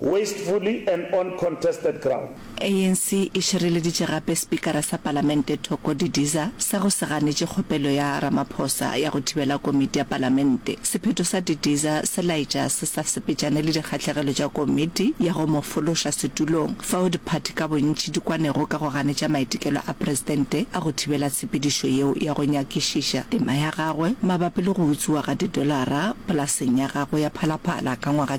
wastefully and on contested ground. ANC e šireleditše gape Spikara sa Palamente Thoko Didiza sa go se ganetše kgopelo ya Ramaphosa ya go thibela komiti ya Palamente. Sephetho sa Didiza se laetša se sa sepetšane le dikgahlegelo tša komiti ya go mo fološa setulong, fao diphathi ka bontši di kwanego ka go ganetša maitekelo a presidente a go thibela tshepedišo yeo ya go nyakišiša tema ya gagwe mabapi le go utswiwa ga didolara polaseng ya gagwe ya Phalaphala ka ngwaga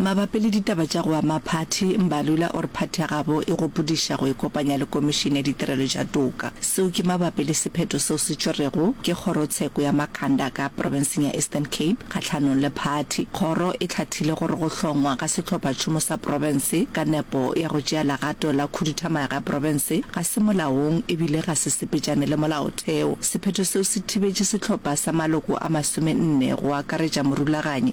Mabapi le ditaba tša go ama phathi, Mbalula o re phathi ya gabo e gopodiša go ikopanya le Komišene ya Ditirelo tša Toka. Seo ke mabapi le sephetho seo se tšerwego ke Kgorotsheko ya Makhanda ka Profenseng ya Eastern Cape kgahlanong le phathi. Kgoro e hlathile gore go hlongwa ga Sehlophatšhomo sa Profense ka nepo ya go tšea legato la khuduthamaga ya profense ga se molaong e bile ga se sepetšane le molaotheo. Sephetho seo se thibetše sehlopha sa maloko a masome nne go akaretša morulaganyi,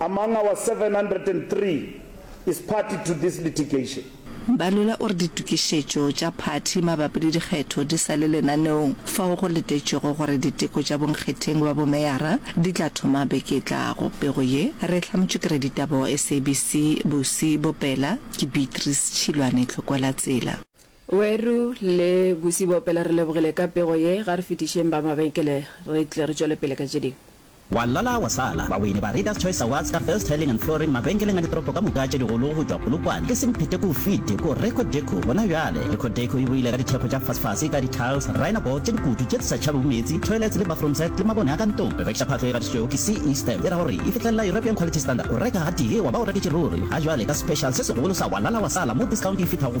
Among our 703 is party to this litigation. Mbalula o re ditokišetšo tša phathi mabapi le dikgetho di sa le lenaneong fao go letetšwego gore diteko tša bonkgetheng ba bomeyara di tla thoma beke e tlago. Pego ye re e hlametšwe ke raditaba wa SABC bosiboPela ke Beatrice Tšhilwane Tlhokwelatsela. Weru le Busi Boopela re lebogile ka pego ye, ga re fetišeng ba mabenkele re tle re tšwele pele ka tše dingwe. Wa lala wa sala, baweini ba Readers Choice Awards ka First Tiling and Flooring mabenkeleng a ditoropo ka moka tše digolo go tšwa Polokwane, e seng phete k'o fete k'o Reco Deco gona bjale. Reco Deco e boile ka dithekgo tša fasfase ka di-tiles, rhino board tše dikutu tše di sa tšhabego meetse, toilets le bathroom set le mabone a ka ntong. Rekišaphatlo e gatišitšwego ke CE Stamp e ra gore e fihlelela European Quality Standard. O reka gatee wa ba o reketše ruri, ga bjale ka special se segolo sa Wa lala wa sala mo discount e fihla go